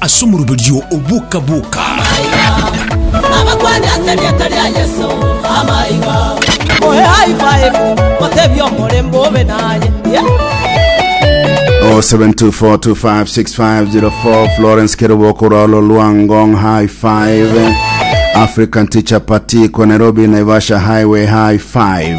Ase omoroberio o boka boka. Abakwane ase erieta ria Yeso ama iga. Moe high five, motebie omorembe obe naye. Yeah. 0724256504 Florence Keruboko Rolo Luangong High Five African Teacher Party kwa Nairobi Naivasha Highway High Five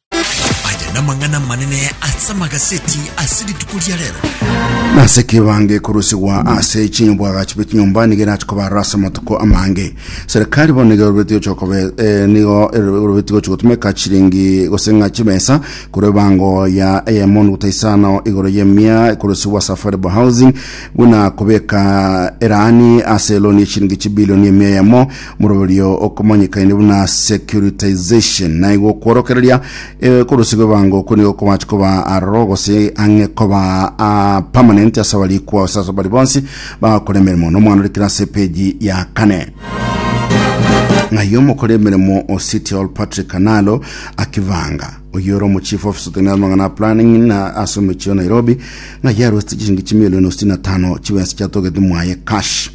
Aya namang'ana amanene ase amagaseti ase rituko ria rero. nase kibange korusigwa ase chinyobwagachi bwe chinyomba nigo erache kobarora ase amatuko amange serikali bono nigo erobeti gochia kobe eh, nigo erobeti gochia gotumeka chiringi gose ng'a chibesa korwa ebango ya eyemo nuguta isano igoro y'emia korusigwa ase affordable housing buna kobeka erani ase eloni echiringi chibilioni emia eyemo Moroberio okomanyekaine buna securitization naigo okworokereria eh, korosi kw'ebango okwo nigo kobache koba aroro gose ang'e koba ah, permanent ase abari kwao ase abari bonsi bagakora emeremo nomwana ore kera ase epeji ya kane ng'ai omokora emeremo o city hall patrick kanalo akivanga oyo ore omochief office otenere amang'ana a planning na ase omochio nairobi ng'ai arwesete chishingi chimilioni sitini na tano chibensi chiatogete mwaye cash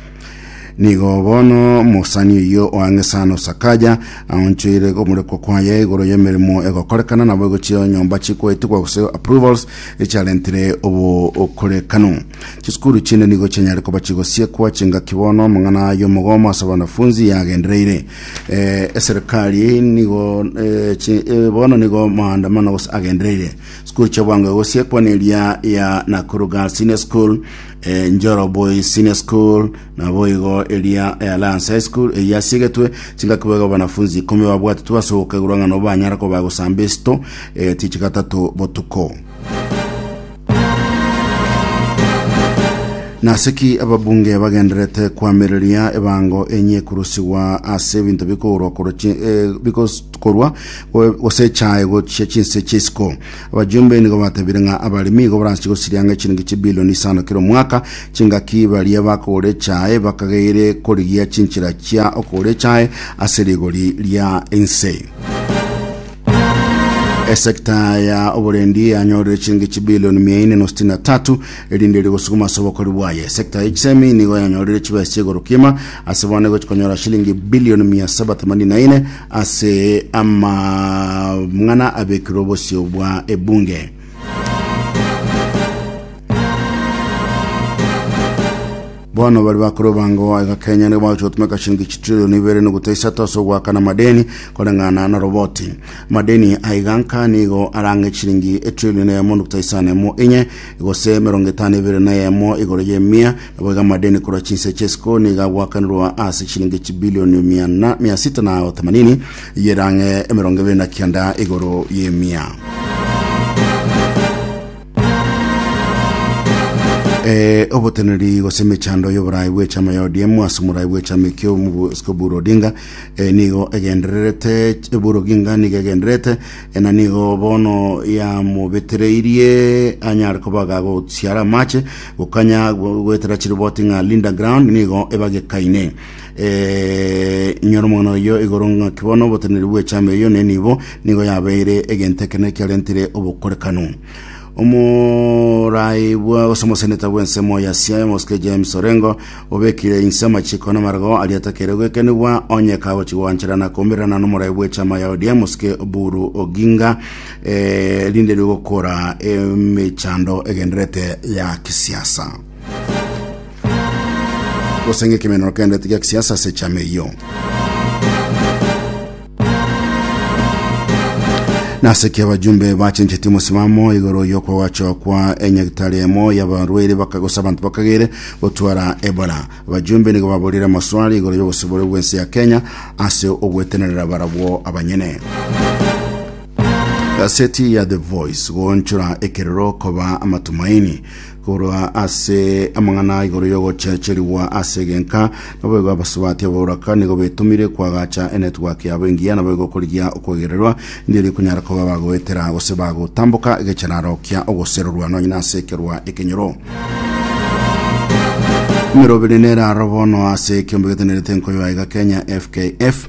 Nigo bono omosani oyio oang'esana osakaja aonchoire omorekwa kwaye igoro y'emeremo egokorekana nabo egochia nyomba chikoetigwa gose approvals echiarentire obokorekano chisukuru chinde nigo chianyare koba chigosiekwa chingaki bono amang'ana y'omogomo ase abanafunzi yagendereire eh, eserikali nigo eh, chi- eh, bono nigo maandamano gose agendereire sukuru chiabwango egosiekwa neria ya Nakuru Girls Senior School Eh, Njoro Boys Senior School naboigo eria eh, Alliance High School eyi yasiegetwe chingaki boigo abanafunzi ikomi babwatetwe ase ogokegurwa ng'a nobo banyare koba gosamba esito egati echi gatato botuko naseki ababunge bagenderete kwamereria ebango enye kurusigwa ase ebinto bikourwa korwa chi- eh, bikokorwa gose echae gochia chinse chi'isiko Abajumbe nigo batebiire ng'a abaremi igo baranche gosiria ang'e chiringi chibilioni isano kera omwaka. Chingaki baria bakogora echae bakageire korigia chinchera chia okogora echae ase rigori ria ense. Esekta ya oborendi yanyorire chiringi chibilioni mia ine na sitini na tatu erinde rigosuguma ase obokori bwaye. Esekta ya chisemi nigo yanyorire chibesa chia igoro kiima ase bono egochi konyora shilingi bilioni mia saba themanini na ine Ase amang'ana abekirwe obosio bwa ebunge. Bono bari bakore obango aiga Kenya nigo bagochia gotumeka shilingi chitrilioni ibere nuguta isato ase ogoakana amadeni koreng'ana na roboti. Amadeni aiga nka nigo arang'e chilingi etrilioni eyemo nuguta isano emo inye gose emerongo etano ibere na eyemo igoro y'emia Naboigo amadeni korwa chinse ch'isiko nigo agoakanirwa ase chiringi chibilioni miana mia sita na otamanini yerang'e emerongo ebere na kianda igoro y'emia. Eh, oboteneri gose emechando y'oborai bw'echama ya ODM ase omorai bw'echama ekio Mosiko Buru Odinga eh, nigo egendererete ch- Buru Oginga nigo egendererete eh, na nigo bono yamobetereirie anyare kobaga gosiara amache Gokanya goetera chiroboti ng'a Linda Ground nigo ebagekaine eh, inyora omong'ina oyo igoro ng'aki bono oboteneri bw'echama eyo ne nibo nigo yabeire egento ekene kiarentire obokorekano omorai bwa gose omoseneta bw'ensemo ya Siaya Mosike James Orengo obekire inse amachiko n'amarego aria atakeire gwekenigwa onye kagochi gwancherana komererana n'omorai bw'echama ya ODM Mosike Oburu Oginga eh, rinde rigokora emechando egenderete ya kisiasa gose ng'e ekemenero kegenderete gia kisiasa ase echama eyio nase kia abajumbe bachencheti omosimamo igoro yokwa gwachokwa enyagitari emo yabarwaire bakagosa abanto bakagere gotwara ebola abajumbe nigo baborire amaswali igoro yogosibore bwense ya kenya ase ogwetenerera barabwo abanyene Gaseti ya The Voice goonchora ekerero koba amatumaini korwa ase amang'ana igoro y'ogochecherigwa ase egenka naboigo abasubati abauraka nigo betumire kwagacha enetwork yabo engiya naboigo korigia okwegererwa ndiri kunyara koba bagoetera gose bagotamboka egechararo kia ogoserorwa nonye nase ekerwa ekenyoro Mirobiri nera robono ase ekiombe getenerete nkoyo aiga Kenya FKF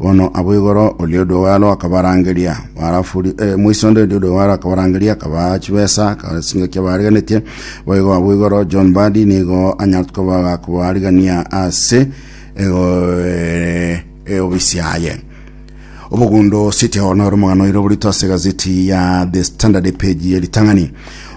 Bono abwo igoro oria Oduowalo akabarangeria, barafuri eh, moiso onde oria Oduowalo akabarangeria, akabaa chibesa, akabaa chingaki abaariganetie. Boigo abwo igoro John Badi nigo anyarete koba kobaarigania ase ego- eh, eh, obisi yaye. Obogundo City Hall noro omogano oire oborito ase egazeti ya The Standard epeji ye ritang'ani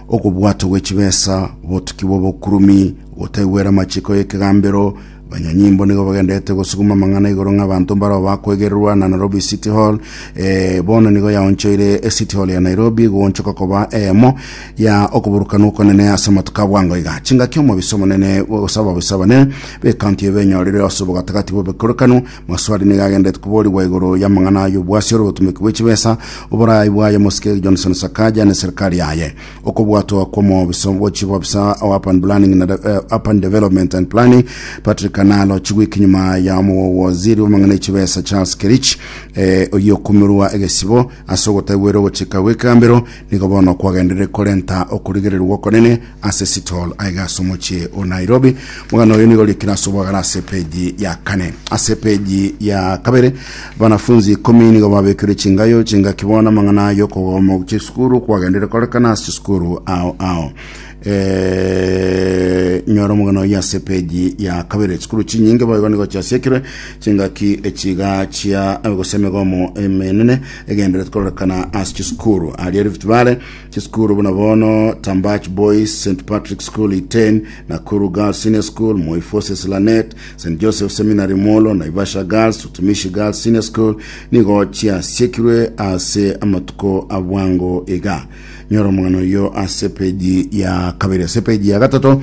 okobwatwa gwe chibesa, obotuki bwa obokurumi, gotaigwera amachiko y'ekegambero, Banyanyimbo nigo bagenderete gosuguma amang'ana igoro ng'abanto mbarao bakwegererwa na Nairobi City Hall eh, bono nigo yaonchoire eh, City Hall ya Nairobi goonchoka koba eyemo ya okoburukanwa okonene ase amatuko a bwango iga chingaki omobisa omonene gose ababisa abanene b'ekaunti eye benyorire ase obogatagati bw'obokorekanu maswali nigo agenderete koborigwa igoro y'amang'ana ay'obwasi ore obotumeki bw'echibesa oboraai bwaye mosike Johnson Sakaja ne serikali yaye okobwatwa kw'omobiso bw'ochi bw'obisa o Urban Planning na de- eh, Urban Development and Planning Patrick Kanalo chigwiki nyuma ya omogogo waziri w'amang'ana ya chibesa Charles Kerich eh, oyio okumirwa egesibo ase ogotagwera ogochika gw'ekambero nigo bono kwagenderire korenta okorigererwa okonene ase Sitol aiga ase omochie o Nairobi. Omogano oyo nigo orikire ase obwagare ase epeji ya kane. Ase epeji ya kabere Abanafunsi ikomi nigo babekirwe chingayo chingaki bono amang'ana ayo okogoma ogochia esukuru kwagendeire korekana ase chisukuru ao ao Eh, nyora omogano oyo ase peji ya kabere chisukuru chinyinge boigo nigo chiasiekirwe chingaki echiga chia eh, gose emegomo emenene egenderete kororekana ase chisukuru aria Rift Valley chisukuru buna bono Tambach Boys St Patrick School Iten Nakuru Girls Senior School Moi Forces Lanet St. Joseph Seminary Molo, Naivasha Girls, Utumishi Girls Senior School nigo chiasiekirwe ase amatuko abwango iga. Nyora omogano oyo ase peji ya kabere. Ase peji ya gatato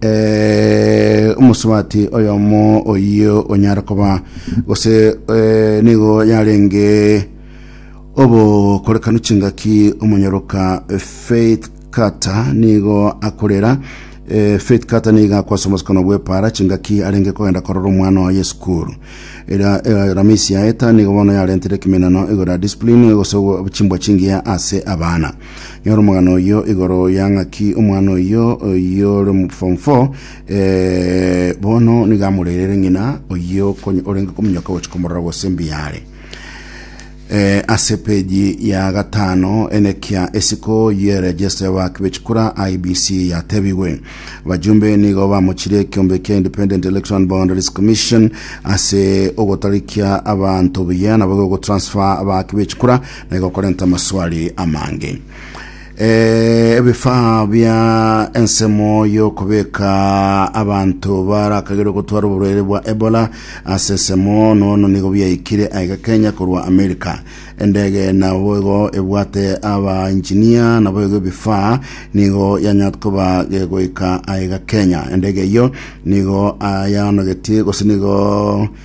eh, omosubati oyomo oyio onyara koba gose eh, nigo yarenge obokorekanu chingaki omonyoroka Faith Carter nigo akorera eh, Faith Carter niga akwasa omosikano bw'epara chingaki arenge kogenda korora omwana oye esukuru era eh, ramisi ya eta nigo bono yarentire ekemenano igoro ya discipline gose obo- chimbwa chingiya ase abana nyora omogano oyo igoro ya ng'aki omwana oyo oyo ore mu form 4 eh, bono niga amorerere ng'ina oyo okonye- orenge kominyoka gochi komorora gose mbiyare E, ase peji ya gatano enekia esiko y'eregesta y'abaaki b'echikura IEBC yatebigwe. Abajumbe nigo bamochire ekiombe kia Independent Election and Boundaries Commission ase ogotarikia abanto buya nabo gotransfer abaaki b'echikura na igo korenta amaswali amange. Eh, ebifaa bia ensemo y'okobeka abanto barakagerwe gotwara oborwaire bwa Ebola ase ensemo nono nigo biaikire aiga Kenya korwa America. Endege nabo igo ebwate abaengineer nabo igo ebifaa nigo yanyat koba gegoika aiga Kenya. Endege eyio nigo ayanogetie gose nigo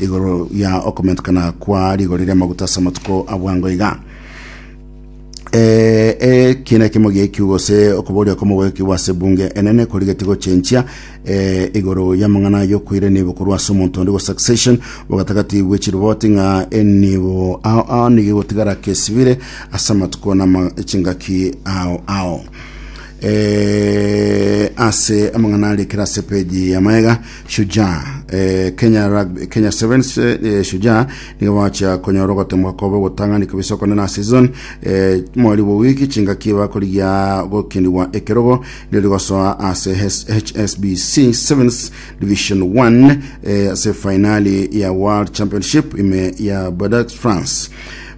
Igoro ya okomentekana kwa rigori ri'amaguta ase amatuko a bwango iga. Eh, eh, kiina kimo giekio gose okoboria komogoekigwa ase bunge enene korigeti gochenchia eh, igoro y'amang'ana yokoire nibo korwa ase omonto onde go succession bogatagati bwechiriboti ng'a enibo ao ao nigo egotigara kesibire ase amatuko na ama- chingaki ao ao eh, ase amang'ana arekera ase peji ya maega Shujaa eh, Kenya Rugby, Kenya Sevens eh, Shujaa nigo bacha konyora ogotemwa kobe ogotang'ani kabisa okone na season eh, mweri bwa wiki chingaki bakorigia gokinigwa ekerogo ndio rigosoa ase HSBC Sevens Division 1 eh, ase finali ya World Championship ime ya Bordeaux France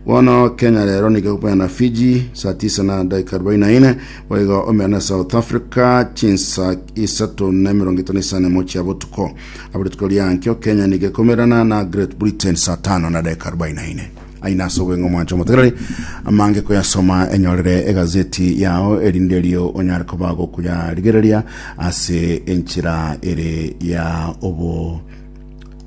bono Kenya rero nigo na Fiji saa 9 na dakika 44 Boigo omena South Africa chinsa isato na emerongo etano isano emo chia botuko abo rituko riankio Kenya nige komerana na Great Britain saa tano na dakika arobaini na ine aina ase obweng'o mwancho motegereri amange koyasoma enyorere egazeti yao erinde erio onyare koba gokuyarigereria ase enchera ere ya obo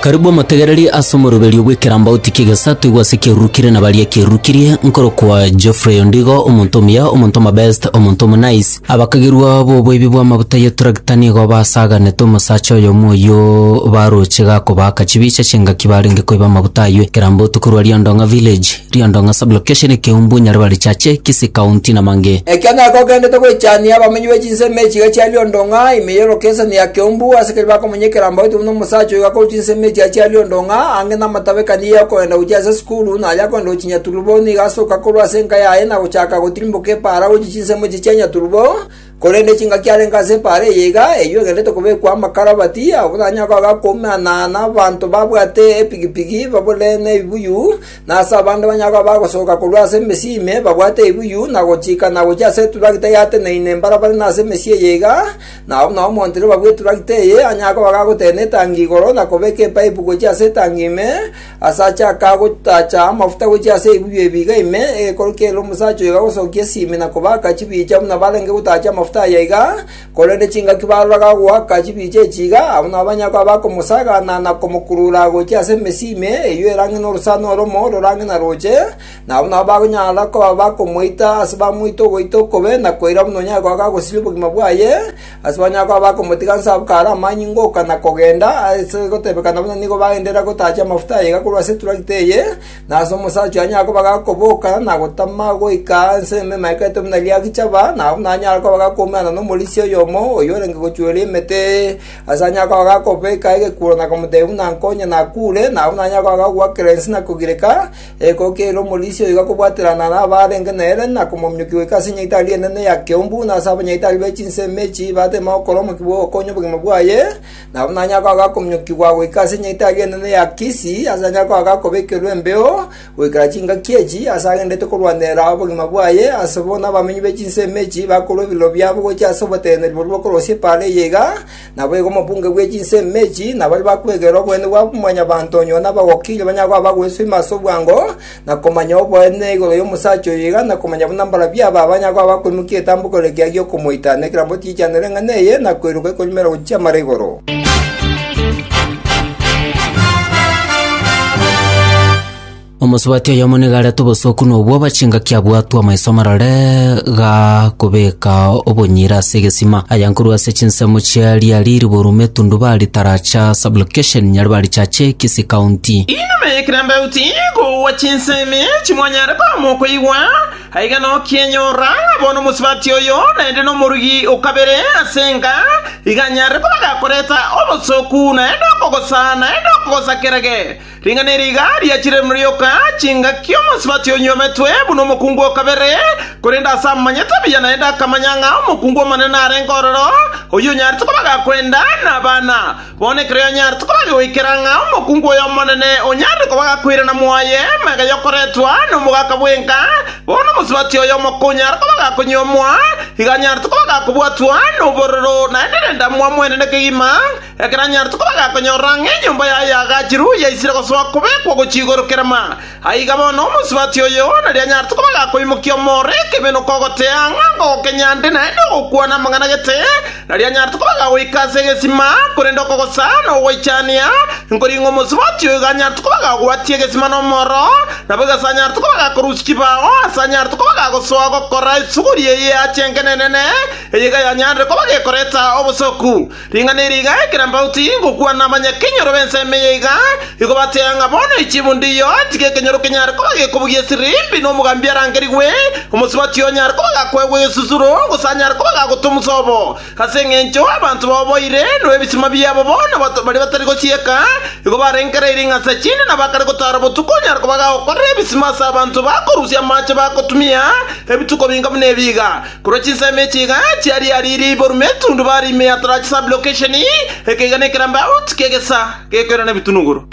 Karibu omotegereri ase omoroberio bw'ekerambauti ki'egesato igwa ase ekiarurukirie na baria ekiarurukirie, nkorokwa Geoffrey Ondigo, omonto omuya, omonto omobest, omonto omonice. Abakagerwa b'oboibi bw'amaguta y'eturagita nigo basaganete omosacha oyomo oyio baroche gakobaaka chibicha ch'engaki barenge koiba amaguta ayio ekerambauti korwa Riondong'a Village. Riondong'a Sub-location Ekeumbu Nyaribari Chache Kisii County na mangĩ. Ekiagera kogendete goichania abamenyi be chinsemo echiga chia Riondong'a ime ye lokeseni ya Keumbu ase keria bakomenye ekerambauti buna omosacha oyo akorwa chinsemo echiga chia Riondong'a ange namatabekani ya okogenda gochia ase esukuru na aria akogenda gochia Nyaturubo nigo asoka korwa ase enka yaye na gochaka gotirimboka epaara gochia chinsemo echi chia Nyaturubo Korende chingaki arenge ase epaara eye iga, eyio egenderete kobekwa amakarabati, ogotanya kwabo akoumana nabaanto babwate epigipigi babore nebibuyu, na ase abande banyare koba bagosoka korwa ase emesii ime babwate ebibuyu na gochika na gochia ase eturagita eyateneine mbarabare na ase emesii eye iga, na buna omonto riroba bw'eturagita eye anyare koba gagoteena etangi igoro na kobeka epaipu gochia ase etangi ime, Ase achaka gotacha amafuta gochia ase ebibuyu ebiiga ime, egekorokia ere omosacha oyo gagosokia esimi na kobaaka chibicha buna barenge gotacha amafuta aya iga, korende chingaki baroraga agoaka chibicha echi iga, abwo nabo banyare koba bakomosagana na komokurura gochia ase emesi ime, eyio erange norosana oromo rorange na roche, na abwo nabo bagonyara koba bakomoita ase bamoite ogoita okobe na koira buna onyare koba gagosiria obogima bwaye, Ase onye akaba bakomotiga nse abwo kare amanyinga oka na kogenda, ase egotebekana buna nigo bagenderera gotachia amafuta aiga korwa ase eturakiti eye, na ase omosacha oyo anyare koba gakoboka na gotama goika nse ime emaikerete buna riagichaba, nabo buna anyare koba gakoumerana nomorisia oyomo oyio orenge gochueria emete. Ase anyare koba gakobeka egekuuro na komotebia buna nkonya nakure, nabo buna anyare koba gakogwakera ense na kogireka, Ekoko ere omorisia oyo igakobwaterana nabarenge nere na komominyokia goika ase nyaitari enene ya keumbu na ase abanyaitari be chinsemo echi bateme gokora omokia bw'ogokonya obogima bwaye, nabo nanyare koba agakominyokigwa goika ase nyaitari enene ya Kisi, ase anyare koba agakobekerwa embeo goikera chingaki echi, ase agenderete korwanera obogima bwaye, ase bono abamenyi be chinsemo echi bakorua ebiroro biabo gochia ase oboteneneri boria bokorosia epaara eye iga, Naboigo omobunge bwe chinse ime echi nabaria bakwegera oboene bwa mwanyabanto onye one abagokirie banyare koba bagweswa ime ase obwango, na komanya oboene igoro y'omosacha oyo iga, na komanya buna mbarabwo aba banyare koba bakoimokia etambuko ere ekiaga gi'okomoita, na ekerambe otiichanera eng'ana eye, na koiroka ekorimerera gochia chiamara igoro. Omosubati oyomo nigo arete obosooku na obwoba chingaki abwatwe amaiso amarore gakobeka obonyira ase egesima, aya nkorwa ase chinsemo chia riari riburu metundu ba ritaracha sublocation nyari barichache Kisii County. Inuma ye kirambaut igo gwa chinsemi echi mwanyare koama okoigwa, aiga nokienyora ng'a bono omosubati oyo naende nomorugi o kabere ase enka, iga anyare koba gakoreta obosooku naende okogosa naende okogosakera ge. Ring'ana eri iga riachire rioka, chingaki omosibati onyometwe buna omokungu o kabere, korende ase amanyete buya naende akamanya ng'a omokungu omonene narenge ororo, oyio onyaarete kobaga kwenda nabana. Bono ekero yanyaarete kobaga goikera ng'a omokungu oyo omonene onyaarire kobaga koirana mwaye mega yokoretwa nomogaka bwenka, bono omosibati oyo omokonyara kobaga konyuomwa iga anyaarete kobaga kobwatwa nobororo naende rende amwamwene nekegima, Ekero anyarete koba gakonyorora ng'a enyomba yaye yagachirwe yaisire gosoa kobekwa gochia igoro kerema, aiga bono omosubati o Yohana rianyarete koba gakoimokia omooro ekebe nokogotea ng'a ngogokenya nde naende ogokwana amang'ana gete, na rianyarete koba gagoika ase egesima, korende okogosa na ogoichania nkoring'o omosubati oigo anyarete koba gagwatia egesima nomooro, nabo igasa anyarete koba gakorusia chibao ase anyarete koba gagosoa gokora esuguri eye ya chengenenene, eye iga yanyanire koba gekoreta obosoku. Ring'ana eri iga ekero mbauti ngokwana abanyakenyoro b'ensemo eye iga igo bateea ng'a bono echibu ndiyo, tiga ekenyoro kenyare koba gekobugia esirimbi, na omogambi arangerigwe, omosubati onyare koba gakoegwa egesusuro, gose anyare koba gagotwa omosobo. Ase engencho abanto baoboire, na ebisima biabo bono baria batari gosieka, igo barengereire ing'a ase chinde, na bakare gotaara botuko onyare koba gagokorera ebisima ase abanto bakorusia amaache bagotumia ebituko binga buna ebi iga. Korwa chinsemo echi iga chiaria aria riiboru metundu bare ime ya tarachi sub-location, ekeiga nekerambe out kegesa gekoirana ebitunuguru.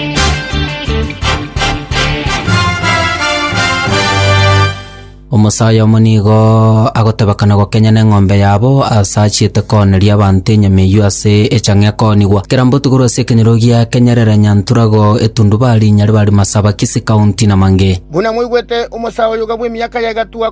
Omosayo omo nigo agoteba kana gokenya neng'ombe yabo ase achiete kooneria abanto enyama eyio ase echang'a ekoonigwa. Kerambe otugorwe ase ekenyero gia Kenyerere, Nyanturago, Etundubari, Nyaribari, Masaba, Kisii County na mangee. Buna mwaigwete, omosayo oyoga bw'emiaka yaye gatugwa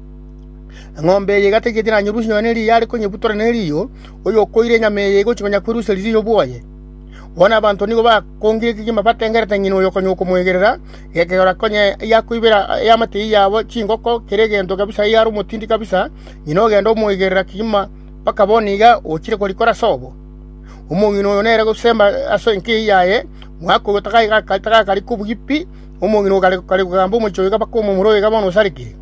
Eng'ombe eye igategete nanyerusie nonya ne riya are konyebutora ne riiyo, oyokoire enyama eye egochia nonya kwerusia riiyo bwoye. Bono abanto nigo bakongire kegima batengerete ng'ina oyo konya okomoegerera, gekegora konya eyakoibera ey'amatei yabo chingoko, kera egento kabisa eyare omotindi kabisa, ng'ina ogenda omoegerera kegima mpaka bono iga ochire korikora ase obo. Omong'ina oyo nere gosembwa ase enkei yaye, mwaka oyo tagakarika obuya pi, omong'ina oyo kare kogamba omochie oyo iga mpaka omomura oyo iga bono osarigire.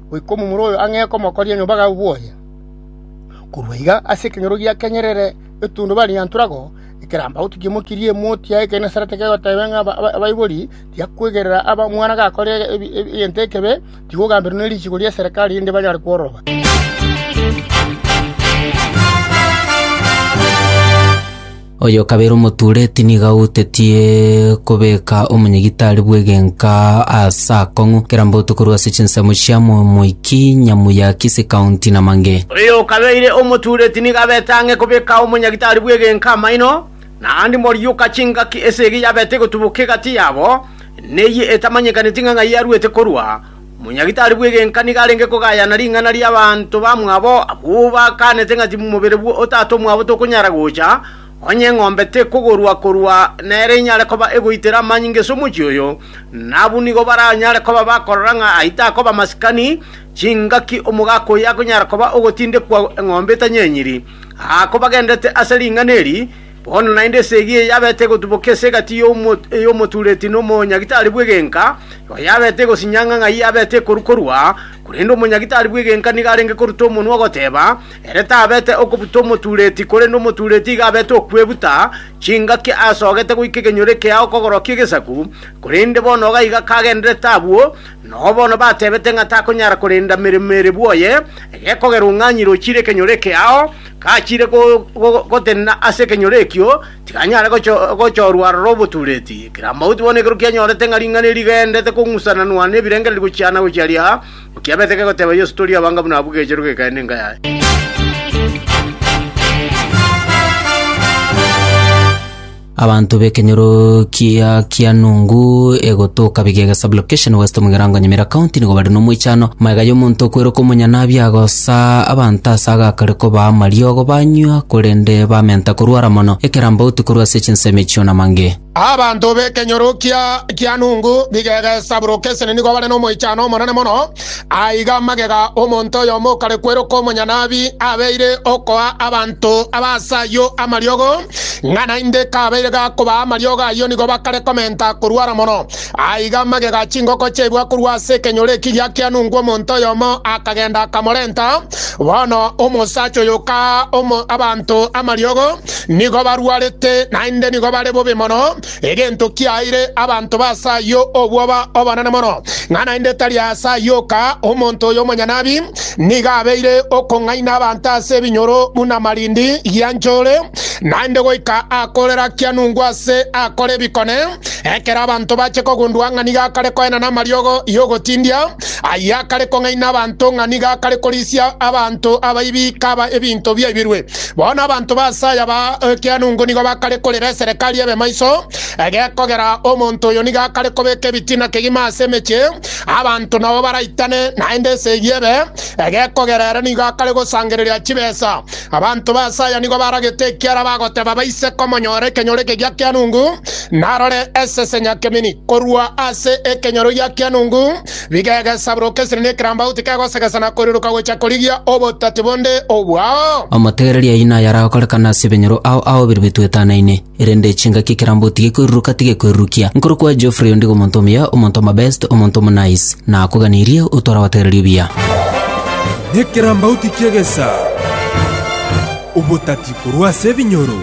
goika omomura oyo ang'e komokoria nyomba agakwa obwoya. Korwa iga ase ekenyoro gia kenyerere etundubari ya nturago ekeramba gotukia emokia eria emoti ya Genesarete kegoteba ng'a abaibori tiakwegerera aba omwana gakorire egento ekebe, tiga ogamberwe ne richiiko ri'eserekari erinde banyare kwororoba. Oyo o kabere omotuureti nigo agoutetie kobeka omonyegitari bw'egenka aase akong'u kera mbotuko korwa ase chinsemo chia momoiki, nyamuya, kisi, kaunti, na mange. Oyo o kabere omotuureti nigo abete ang'e kobeka omonyagitari bw'egenka amaino, naende morioka chingaki esegi yabete egotuboka egati yabo, neyio etamanyekaneti ng'a ng'ai yarwete korwa, Omonyagitari bw'egenka nigo arenge kogayana ring'ana ri'abanto bamwabo abwo bakaanete ng'a timomobere bwo otato omwabo tokonyara gocha, onye eng'ombe tekogorwa korwa nere inyare koba egoitera amanyinga ase omochie oyo, na abwo nigo baranyare koba bakorora ng'a ayio takoba masikani chingaki omogaka oyio akonyara koba ogotindekwa eng'ombe etanyenyiri. Aa kobagenderete ase ring'ana eri, Bono naende esegi eye yabete egotuboka ase egati y'omotureti na omonyagitari bw'egenka, ero yabete egosinya ng'a ng'ai abete ekoru‐korua, korende omonyagitari bw'egenka nigo arenge koruta omonwa ogoteba, ere tabete okobuta omotureti, korende omotureti igo abete okwebuta chingaki asogete goika ekenyoro ekea okogorokia egesaku, korende bono iga iga kagendererete abwo, nao bono batebete ng'a takonyara korenda meremo ere bwoye, gekogerwa ng'a nyirochire ekenyoro ekeao, Gachiire gotenena ase ekenyoro ekio, tiganyare gochorwa aroro obotuureti. Kera mauti bono ekero kianyorete ng'a ring'ana eri rigaendete kong'usananwa nebirengererio gochiana-gochia ria, nkiabete kegoteba Yeso, Tori abanga buna abwo gecherwe gekeene enka yaye. Abanto b'ekenyoro kia Kianungu egotoka Bigega Sub-Location West omu Egerango Nyamira County nigo bare nomoichano magega y'omonto okweroka omonyanabi agosa abanto ase agakare kobaa amariogo banywa korende bamenta korwara mono ekerambauti korwa ase chinsemo echio na mange. Abanto b'ekenyoro kia Kianungu Bigega Sub-Location nigo bare nomoichano omonene mono Aiga amagega omonto oyomo okare kweroka omonyanabi abeire okoa abanto aba ase ayio amariogo, ng'a naende kabeire gakobaa amariogo ayio nigo bakare komenta korwara mono. Aiga amagega chingoko chiaibwa korwa ase ekenyoro eki giakianungwa omonto oyomo akagenda akamorenta. Bono omosacha oyo okaa abanto amariogo nigo barwarete naende nigo bare bobe mono, Egento kiaeire abanto b'aase ayio obwoba obonene mono, ng'a naende tari aase ayio oka omonto oyo omonyanabi nigo abeire okong'aina abanto ase ebinyoro buna marindi gia nchore, naende goika akorera kianungu ase akore ebikone. Ekero abanto bache kogundwa ng'a nigo akare koenana amariogo y'ogotindia, ayio akare kong'aina abanto ng'a nigo akare korisia abanto abaibi kaba ebinto biaibirwe. Bono abanto b'aase aya ba ekeanungu nigo bakare korera eserekari ebe maiso, egekogera omonto oyo nigo akare kobeka ebitina kegima ase emechie, abanto nabo baraitane, naende esegi ebe, egekogera ere nigo akare gosangereria chibesa. Abanto b'aase aya nigo baragete ekiara bagoteba baise komonyora ekenyoro eke gi'ekeanungu, narore esese nyakemeni korwa ase ekenyoro gi'ekeanungu, Bigegesaboroka esiri nekerambauti kegosegesa na koiroka gochia korigia obotati bonde obwao. Amategereria aino ayaragokorekane ase ebenyoro ao ao bire bituetanaine, erende chingaki ekerambauti gekoiruruka tigekoirurukia. Nkorokwa Geoffrey ondigo omonto omuya, omonto omabest, omonto omonice. Nakoganirie otware abategereria obuya. Nekerambauti kiegesa obotati korwa ase ebinyoro.